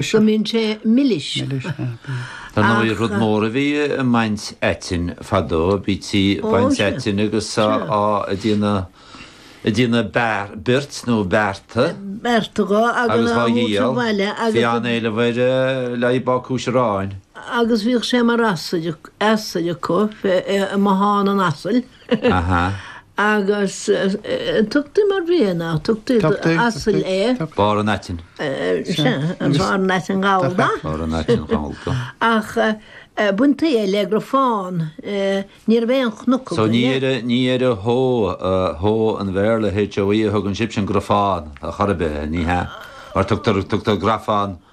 Go mbíonn sé milis. Milis, aye, bíonn. Dar ndóigh, rud mór a bhí i mbaint aitinn fadó, bítí baint aitinn agus ag déanamh beirt nó bearta. Bearta dhó agus dhá dhíol agus dhá dhíol agus. Bhí an-éileamh air le haghaidh bácúis aráin. Agus bhíodh sé mar easair acu, i mbothán an asail. Agus tugtaí mar bhia é ná tugtaí asal é. Barr an aitinn. Barr an aitinn ghallda. Barr an aitinn ghallda. Ach baintí é le grafán, níorbh aon chnuc. So ní ar hoe an Bhéarla HOE a thugann sibhse an grafán, chor ar bith, ní hea? Mar tugtar grafán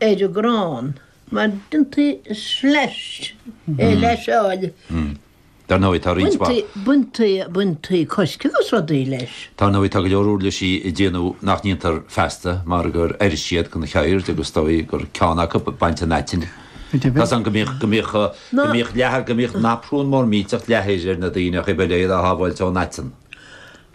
ar an gcrann mar baintí sleais é le feiceáil. Dar ndóigh, tá roinnt mhaith. Baintí, baintí coisc agus rudaí leis. Dar ndóigh, tá go leor uirlisí ag déanamh nach ndéantar feasta mar gur oir siad chun cheird agus is dóigh gur ceann acu baint an aitinn. Tá a fhios a'm go mbíodh, go mbíodh, go mbíodh leathar, go mbíodh naprún mór millteach leathair ar na daoine cheapfainn le iad a shábháilt ón aiteann.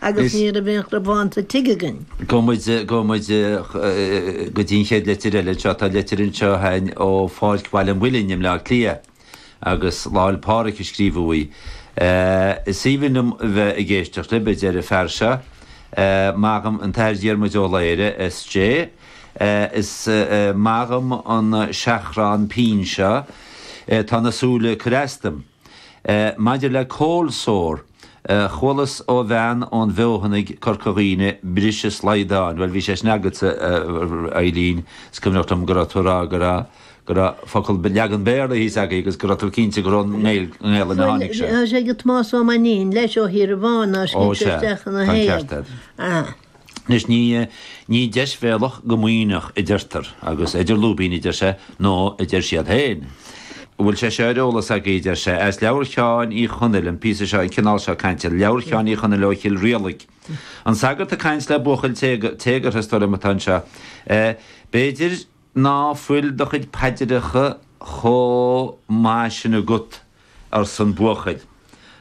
agus ní raibh aon chor bánta tigh againn. Gabhfaidh muid, gabhfaidh muid, go dtí an chéad litir eile anseo, tá litir anseo againn ó Pháirc Bhaile an Mhuilinn i mBleá Cliath agus Lá 'le Pádraig a scríobhadh í. Is aoibhinn liom a bheith ag éisteacht libh, a deir an fear seo. M'anam an tAthair Diarmuid Ó Laoghaire SJ. Is maith dhom an seachrán pinn seo. Tá na súile ag cur as dom. Maidir le Cold Sore, chualas ó bhean ón bhFeothanaigh, Corca Dhuibhne, briseadh slaghdáin, bhuel, bhí sé sin agatsa, a Eilín, is cuimhneach liom go raibh tú ag rá go raibh, go raibh focal, leagan Béarla thíos agaibh agus go raibh tú cinnte gur ón nGaelainn a tháinig sé. Bhuel, tá sé ag Tomás Ó Mainnín, leis, ó Thír Bhán, nár scríobh sé isteach ina thaobh. Ó, sea, tá an ceart agat. Anois ní, ní deisbhéalach go Muimhneach, a deirtear, agus idir lúibín, a deir sé, nó, a deir siad féin, bhfuil sé seo ar eolas agaibh, a deir sé, as Leabhar Sheáin Uí Chonaill, an píosa seo, an cineál seo cainte, Leabhar Sheáin Uí Chonaill ó Chill Rialaigh. An sagart ag caint le buachaill téagartha, is dóigh liom atá anseo. Eh, b'fhéidir. Ná fuil do chuid paidreacha chomh maith sin agat, arsa an buachaill,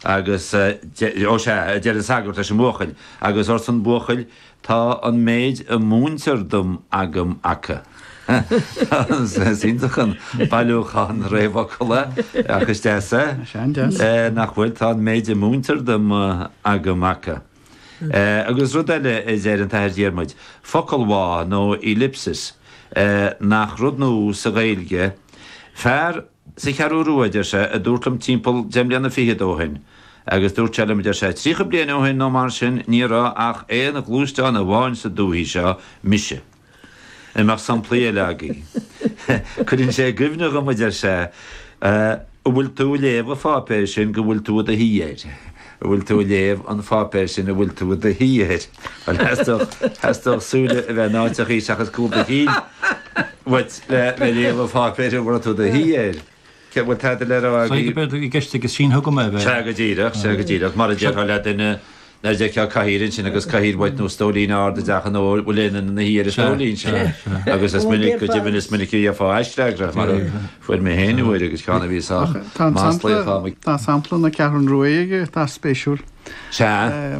agus, ó sea, a deir an sagart leis an mbuachaill, agus arsa an buachaill, tá an méid a múintear dom agam aca. Is iontach an bailiúchán réamhfhocal ach is deas é, nach bhfuil, tá an méid a múintear dom agam aca. Agus rud eile a deir an tAthair Diarmuid, focalbhá nó ellipsis, nach rud nua sa Ghaeilge, Fear sa Cheathrú Rua, deir sé, a dúirt liom timpeall deich mbliana fichead ó shin, agus dúirt sé liom, deir sé, tríocha bliain ó shin nó mar sin, ní raibh ach aon ghluaisteán amháin sa dúthaigh seo, mise. An mbeadh samplaí eile againn? Cuireann sé i gcuimhne dhom, a deir sé, An bhfuil tú ag léamh an pháipéir sin go bhfuil tú i do shuí air? An bhfuil tú ag léamh an pháipéir sin a bhfuil tú i do shuí air? Bhuel, theastódh súile a bheith in áiteacha seachas cúl do chinn uait le bheith ag léamh an pháipéir a bhfuil tú i do shuí air. Cé bhfuil tada le rá ag. i gceist aige sin thug mé bheith. Sea go díreach, sea go díreach. Mar a déarfá le duine nuair a d'fheicfeá cathaoir ansin agus cathaoir uait nó stóilín ard i dteach an óil, bhfuil aon duine ina shuí ar an stóilín sin? Agus is minic go deimhin is minic a gheofá aisfhreagra mar a fuair mé féin uair agus ceann a bhí sách maslach. Tá sampla na Ceathrún Rua aige, tá spéisiúil. Sea.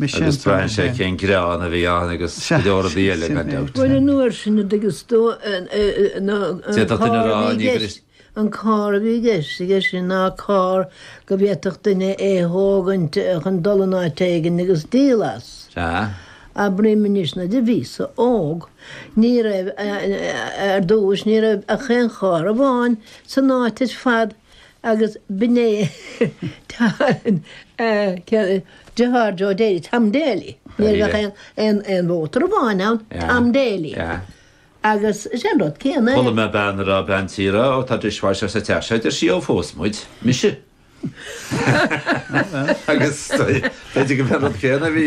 agus braitheann sé cén greann a bhí ann agus go leor rudaí eile, gan dabht. Bhuel, an uair sin, dtuigeas dó, ná, D'fhéadfadh duine a rá, ní go bhfuil. an carr a bhí i gceist aige sin ná carr go bhféadfadh duine é a thógaint chun dul in áit éigin agus díol as. Sea. Abraím anois, nuair a bhíos-sa óg, ní raibh, ar dtús, ní raibh ach aon charr amháin san áit ar fad. agus b'in é deartháir Joe Daly, Tom Daly. Ní raibh ach aon, aon, aon mhótar amháin ann, Tom Daly. Agus is é an rud céanna. Chuala mé bean a rá, bean tí a rá, Ó, tá dishwasher sa teach seo, a deir sí, ó phós muid, mise. Agus b'fhéidir go bhfuil an rud céanna a bhí.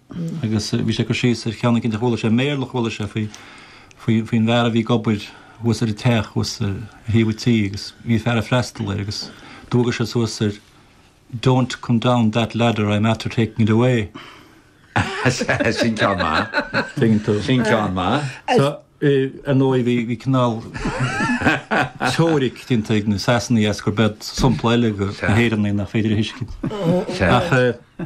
agus bhí sé ag cur síos ar cheann eicínt a chuala sé, i mBéarla a chuala sé, faoi, faoi, faoin bhfear a bhí ag obair thuas ar an teach thuas ar thaobh an tí agus bhí fear ag freastal air agus d'fhuagair sé suas air, Don't come down that ladder, I'm after taking it away. Sin ceann maith. Tuigeann tú. Sin ceann maith. So, eh, ar ndóigh bhí, bhí cineál teoiric dionta ag na Sasanaí as gurb eod sompla eile go na hÉireannaí nach féidir a thuiscint. Ach, eh,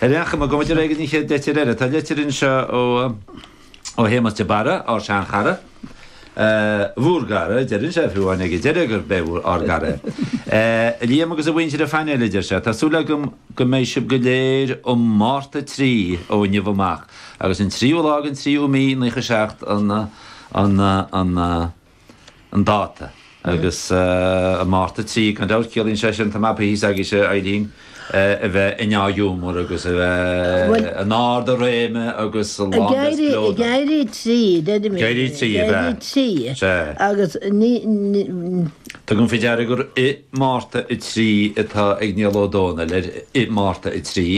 Ar aon chuma, gabhaimid ar aghaidh chun an chéad leitir eile. Tá leitir anseo ó Shéamas de Barra, ár seanchara, bhur gcara, a deireann sé, fiú amháin ag an deireadh gur b'é ár gcara é. A Liam agus a mhuintir an phainéil, a deir sé, tá súil agam go mbeidh sibh go léir um Márta 3 ó inniu amach, agus an tríú lá den tríú mí, naocha seacht, an. an dáta. Agus um Márta trí, gan dabht, ciallaíonn sé sin, tá mé abhaile thíos aigesean, Eileen, a bheith i ndea-ghiúmar agus a bheith in ard a réime agus lán de spleodar. Ag éirí tríd, a deir mé. Ag éirí tríd, a deir. Ag éirí tríd. Sea. Agus ní. Tugaim faoi deara gur i Márta a trí atá ag Niall Ó Dónaill, ar i Márta a trí,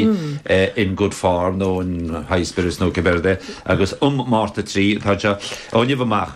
in good form nó in high spirits nó cibé rud é, agus um Márta trí atá anseo, ó inniu amach.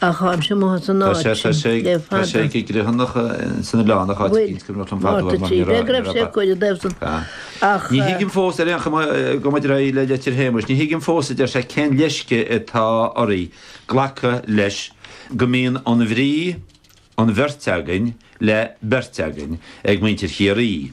Ach táim se amuigh as an Tá áit sé, tá sin sé, le tá sé fada. ag an gCriomhthanach san Oileánach áit a Bhuel, gcinn go raibh an fada Márta mar ní trí, raibh, ní beagraf raibh sé ba. cuid a dóibhsan. Tá. Ach, Ní thuigim fós ar aon chuma eh, gabhfaidh muid ar aghaidh le leitir Shéamais, ní thuigim fós a deir sé cén leisce atá oraibh glacadh leis go mbíonn an bhrí an bheirt againn le beirt againn ag muintir Chiarraí.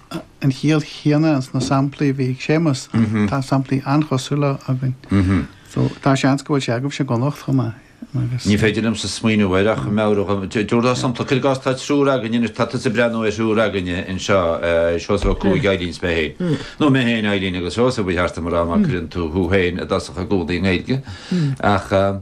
an chiall chéanna ins na samplaí a bhí ag Séamas, tá samplaí an-chosúla againn. So tá seans go bhfuil sé agaibhse i gConnachta chomh maith agus. Ní féidir liomsa smaoineamh air ach meabhraigh dhom. Tabhair dhom sampla, cuir i gcás tá triúr againn anois, tá tusa ag breathnú ar thriúr againne anseo, Seosamh Ó Cuaig, Eilín 's mé féin. Nó mé féin, Eilín agus Seosamh ba cheart dhom a rá mar cuireann tú thú féin i dtosach i gcónaí i nGaeilge. Ach.